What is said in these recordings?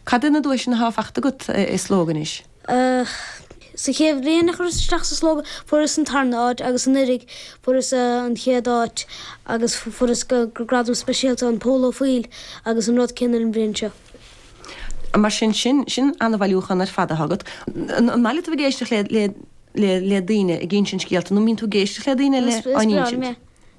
Cad iad na duaiseanna atá fachta agat i Slógadh anois? Ach sa chéad bhliain a chuireas isteach sa Slógadh, fuaireas an tarna áit agus anuiridh fuaireas an chéad áit agus fuaireas gradam speisialta an Pól Ó Foighil agus an rud céanna an bhliain seo. Mar sin, sin, sin ana-bhailiúchán ar fad atá agat. An maith leat a bheith ag éisteacht le, le, le, le daoine ag insint scéalta nó an mbíonn tú ag éisteacht le daoine le, á n-insint?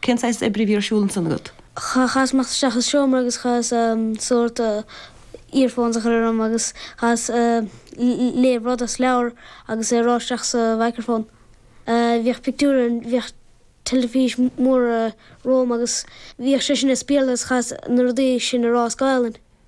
Cén saghas oibre a bhí ar siúl ansan agat? Chaitheas imeacht isteach sa seomra agus chaitheas sórt earphones a chur orm agus chaitheas léamh rud as leabhar agus é a rá isteach sa mhicreafón. Bhíodh pictiúir ann, bhíodh teilifís mór romham agus bhíodh sé sin ag spíobhadh agus chaitheas na rudaí sin a rá as Gaelainn.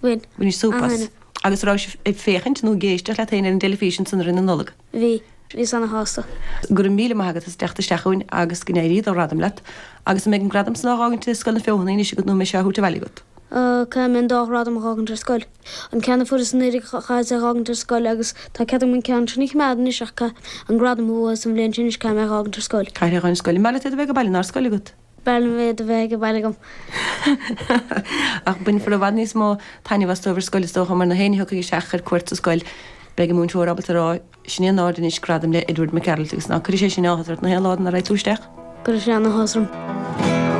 bhain Bhaineas súp as. An-duine. Agus an rabhais ag féachaint nó ag éisteacht leat féin ar an dteilifís ansan i rith na Nollag? Bhíos. Bhíos ana-shásta. Go raibh míle maith agat as teacht isteach chugainn agus go n-éirí do ghradam leat. Agus an mbeidh an gradam san á dh'fhágaint thiar i Scoil na Feothanaí anois agat nó an mbeidh sé á thabhairt abhaile agat? Caithfidh mé an dá ghradam a dh'fhágaint ar scoil. An ceann a fuaireas anuiridh chaitheas é a dh'fhágaint ar scoil agus tá cead agam an ceann sin a choimeád anois ach caithfidh an gradam a bhuas an bhliain seo anois caithfidh mé é a dh'fhágaint ar scoil. Caithfidh tú é a dh'fhágaint ar scoil. An mb'fhearr leat iad a bheith ag baile ná ar scoil agat? B'fhearr liom iad a bheith ag baile agam. Ach bainfear i bhfad níos mó taitneamh as dóibh ar scoil, is dócha, mar na héinne a thiocfaidh isteach ar cuairt sa scoil. Beidh an múinteoir ábalta a rá, 'Sin é in airde anois, gradam le Edward McArdle', agus ná cuirfidh sé sin áthas ort na haon lá go raghaidh tú isteach. Cuirfidh sé an-áthas orm.